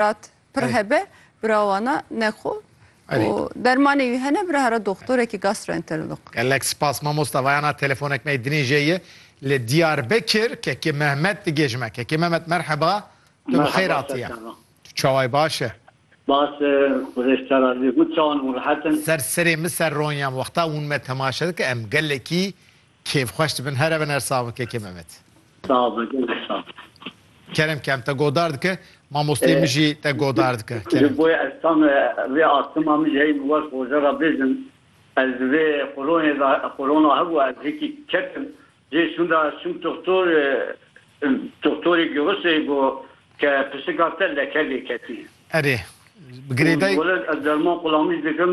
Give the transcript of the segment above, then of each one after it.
Rat pir hebe bira wana ne xo û dermanê wî hene bira hera doxtorekî gastroenterolog. Gelek spas mamosta vayana telefonek me dinê jê ye li Diyarbekir Kekê Mehmet digê ji me. Kekê Mehmet merheba tu bi xêr hatiye. Tu çawayî baş e? Baş e xwedêş te razî be. Gund çawan û rehet in? Ser serê min ser ronyan wexta hûn me temaşe dikin em gelekî Kêf xweş dibin here bin her sav bike kê Memet. Saw be gelek saw. Kerem kem te godar dike mamosteyê min jî te godar dike kerem. Ji bo ez tam vê astima min ji heyî min weş roje re bêjim ez di vê qoronê de qorona hebû ez hikî ketim cê şûn de çûm toxtor toxtorê girisê got ke pisika te leke lê ketî. Erê bi girêdayî. Wele ez derman qulamî dikim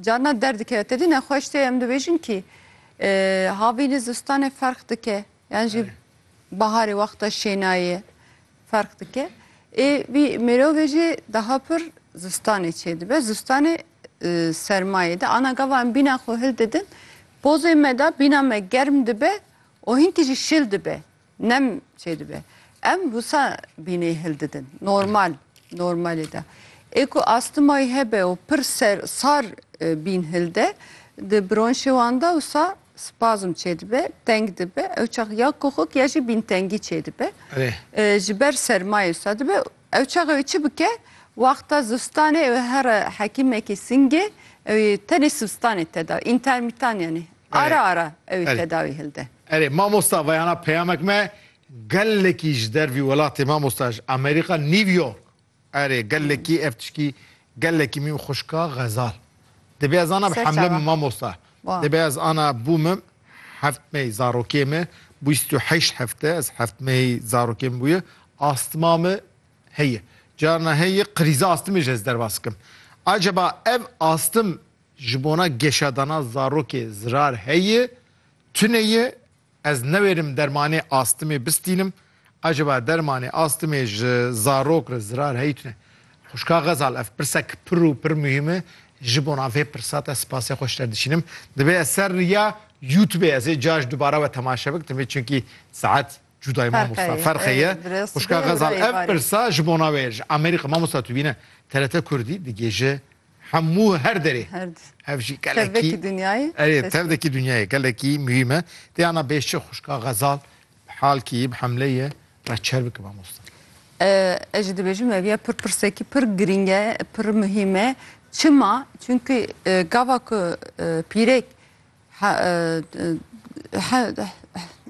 Carna der dikeve. Tevî nexweş tê em dibêjin kî havînê zistanê ferq dike yan jî baharê wexta şênayê ferq dike. Ê vî mêrovê jî daha pir zistanê çê dibe. Zistanê sermayê de ana gava em bîna xwe hil didin. Pozê me de bîna me germ dibe û hinkî jî şil dibe. Nem çêdibe. Em wisa bînê hil didin. Normal. Normalê de. Ê ku astimayî hebe û pir ser sar e, bîn hil de, di bronşê wan de wisa spazm çêdibe, teng dibe. Ew çax ya koxik ya jî bîntengî çêdibe. Erê. E, ji ber sermayê wisa dibe. Ew çax ew ê çi bike? Wexta zivistanê ew ê here hekîmekî singê, ew ê tenê sivistanê teda. Întermîtan yanî. Ara ara ew tedawî hilde. Erê mamosta veyana peyamek me gelekî ji dervî welatê mamosta ji Amerîka New York. Erê gelekî ev tişkî gelekî mîm xuşka xezal. Dibê ez ana bi hemle min mamosta. Dibê ez ana bû min heft mey zarokê min bîst û heşt hefte ez heft mey zarokê min bûye astima min heye. Carna heye qirîza astimê jî ez derbas dikim. Acaba ev astim Ji bona geşadana zarokê zirar heye, tune ye, ez newêrim dermanê astimê bistînim, acaba dermanê astimê ji zarok re zirar heye tune? Xwişka Xezal, ev pirsek pir û pir muhîm e, ji bona vê pirsa te spasê xwe ji te dişînim. Divê ez ser riya youtubê ez ê carj dubare we temaşe bikim vê çunkî saet cudayê mamosta ferq heye. Xwişka Xezal, ev pirsa ji bona we ye, ji Amerîka mamosta tu bîne TRT Kurdî digihêje. Hemû her derê. Her di. Ev jî gelekî. Tevvekî dinyayê. Erê tev de kî dinyayê gelekî muhîm e. Tê ana bêşçi xwişka Xezal bi hal kî bi hemlê ye re çer bike mamosta. Ez jî dibêjim ev ya pir pirsekî pir girîng e, pir muhîm e. Çima? Çimkî gava ku pîrek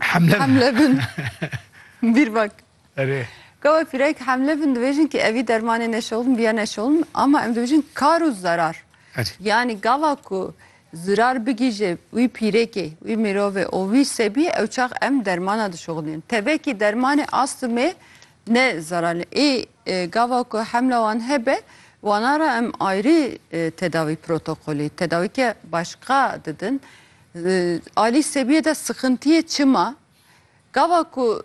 hemle bin bîr bak. Erê. Gawe pirek hemle bin dibêjin ki evî dermanê neşewln biya neşewln ama em dibêjin kar û zerar. Erê. Yanî gava ku zirar bigîje wî pîrekê, wî mirovê û wî sebiyê ew çax em dermana dişewlnên. Tevekî dermanê astmê ne zeral e. Ê gava ku hemla wan hebe wana re em ayrî tedawî protokolê, tedawîke başka didin. Alî sebiyê de sixintiyê çima? Gava ku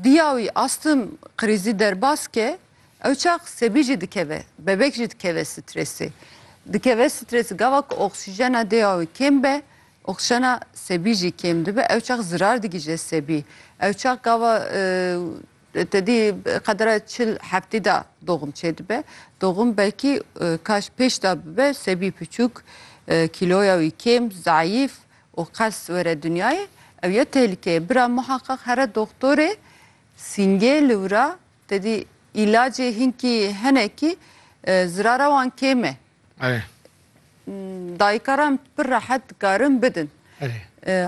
Diya wî astim krîzî derbas ke ew çax sebî jî dikeve, bebek jî dikeve strêsê. Dikeve strêsê gava ku oksîjena dêya wî kêm be, oksîjena sebî jî kêm dibe, ew çax zirar digihîje sebî. Ew çax gava tedî qedera çil heftî de doğum çêdibe. Doğum belkî kaş pêş de bibe sebî piçûk, kîloya wî kêm, zayîf û qes were dinyayê ew ye tehlîkeyê. Bira muheqeq here doxtorê sîngê li wir a tedî îlacê hinkî hinekî zirara wan kêm e. Dayikaran pir rehet dikarin bidin.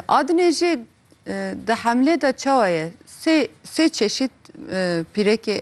Adinê jî di hemlê de çawa ye? Sê çeşît pîrekê